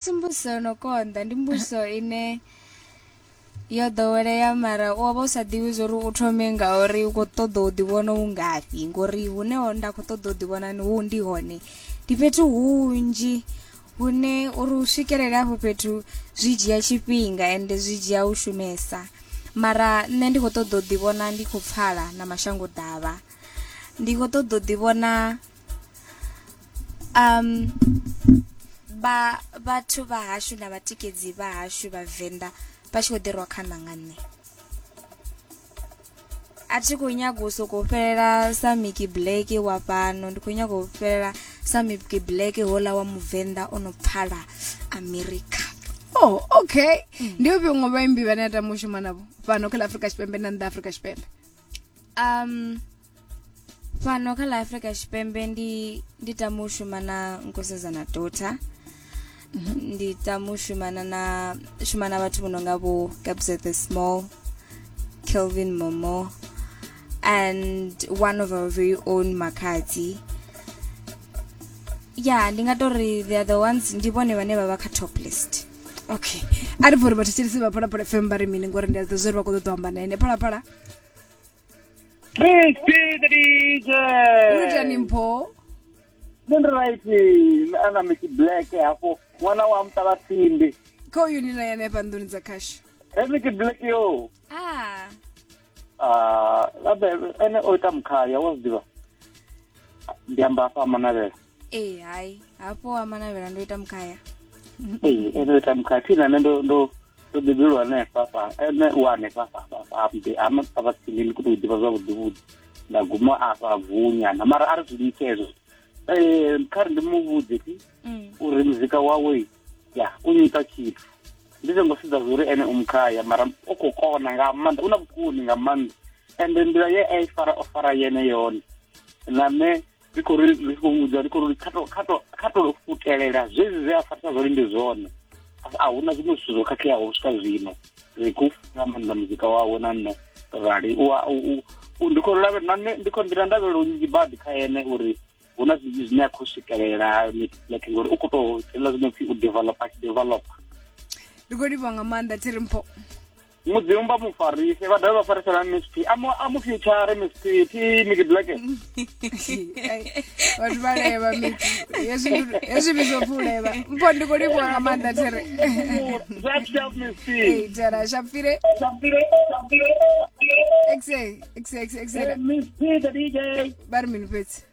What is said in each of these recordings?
Asi mbuso yo no konḓa, ndi mbuso ine yo ḓowelea mara u wa vha u sa ḓivhi zwa uri u thome ngauri u khou ṱoḓa u ḓivhona u ngafhi ngori hune ho nda khou ṱoḓa u ḓivhona ni hu ndi hone ndi fhethu hunzhi hune uri u swikelele afho fhethu zwi dzhia tshifhinga ende zwi dzhia u shumesa mara nṋe ndi khou ṱoḓa u ḓivhona ndi khou pfala na mashango ḓavha ndi khou ṱoḓa u ḓivhona Vha vhathu vha hashu na vhatikedzi vha hashu vhavenḓa vha tshi kho ḓi rwa khana nga nṋe. A thi kho nyaga u soko fhelela sa Mickey Black wa fhano ndi kho nyaga u fhelela sa Mickey Black hola wa muvenḓa ono pfala America. Oh okay ndi ufhio muṅwe vhaimbi vhane a tama u shuma navho fhano kha ḽa Afurika Tshipembe na nnḓa Afurika Tshipembe. fhano kha ḽa afurika tshipembe ndi ndi tama u shumana nkosazana dota mhm. ndi tama u shumana na shumana vhathu vho no nga vho gabs the small kelvin momo and one of our very own makhadzi ya ndi nga tori the other ones ndi vhone vhane vha vha kha top list okay a ri bva uri vhathetshelisi vha phalaphala fm vha ri mini ngori ndi a zwi ḓa zwo ri vha kho ṱoḓa u amba na ene phalaphala unotani mpho Nṋe ndi right a na miki black hafho ṅwana wa mutala simbi kho yuni na yane hafha nḓuni dza khasho he miki black yo ah Ah, abe ene o ita mukhaya wa zwi ḓivha ndi amba hafha a manavhela ee hai hafho wa manavhela ndo ita mukhaya ee ndo ita mukhaya thina nṋe ndo ndo ndo bebelwa hanefha fha ene u hanefha fhaambe ama papa tsini ndi kuto ḓivha zwavhuḓivhuḓi nda guma afha vunyana mara a ri zwi litshe hezwo um kha ri ndi mu vhudze ti mm. uri muzika wawe ya u nyita tshithu ndi songo sedza zwo uri ene u mukhaya mara u khou kona nga maanḓa u na vhukoni nga maanḓa ende nḓila ye a i fara o fara yene yone na nṋe ndi khou ri ndi khou vhudza ndi khou ri kha to kha to kha to futelela zwezwi zwe a farisa zwone ndi zwone a huna zwiṅwe zwithu zwo khakheaho u swika zwino ri khou funa maanḓa muzika wawe na nṋe rali ndi khou lave na nṋe ndi khou nḓila ndavhelo nnzhi badi kha ene uri hu na zwinzhi zwine a khou swikelela like ngori u khou tou tshelela zwino pfhi u developa tshi developa ndi khou livha nga maanḓa thirimpho mudzimu vha mu farise vha dovhe vha farise na msp a mu future msp thi miki black vhathu vha leva miki hezwi vhidzo pfi u leva mpho ndi khou livhuwa nga maanḓa there tera shapfire exe exe exe exe ba ri mini fhedzi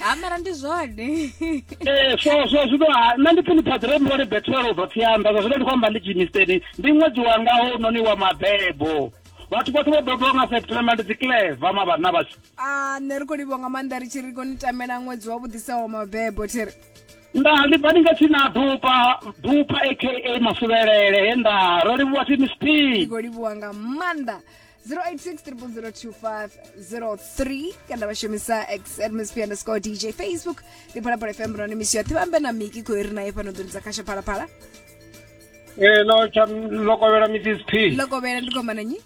ha mara ndi zwone ee so so zwino nṋe ndi pfhi ni phaḓire mivhone bethelo ubva pfhi amba zwa zwino ndi khou amba ndi jimisteni ndi ṅwedzi wanga ho noni wa mabebo vhathu vhoṱhe vho bebiwa nga september ndi dzicleva mavhanna vhashu a ah, nṋe ri khou livho nga maanḓa ri tshi ri koni tamela ṅwedzi wa vhuḓisaho mabebo thiri nda ndi bva ndi nga tshi na dupa dupa aka masuvhelele he nda ro livhuwa thi miss p ndi khou livhuwa nga maanḓa 0860002503 kana vha shumisa x atmosphere underscore dj facebook ndi phalaphala fm murani misi yoṱhe vhambe na miki khou ri naye fhano ḓoni dza khasha phalaphala Eh, lo tsha lokovhela mrs p lokovhela ndi khomana nyi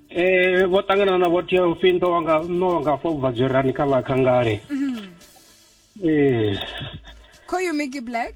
eh vho ṱangana na vho tea upfi ndo wanga no wanga fo bva dzwerani kha vha khangale eh khoyu miki black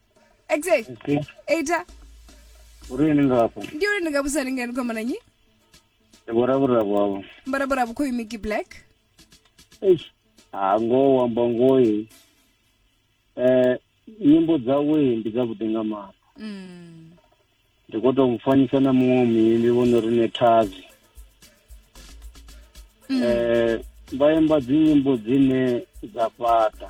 exe Ese, eita uri ni ngafho ndi uri ndi nga vhusa ni ngani khomana nyi ndi vhoravhura vwavho mbarabara vhukho imiki black eish ha ngoho wamba ngoyi eh nyimbo dzawe ndi dzavhuḓi nga maanḓa mm. ndi khou tou mufanyisa na muṅwe muimbi vho no ri nethazi um vha imba dzinyimbo dzine dza fhaṱa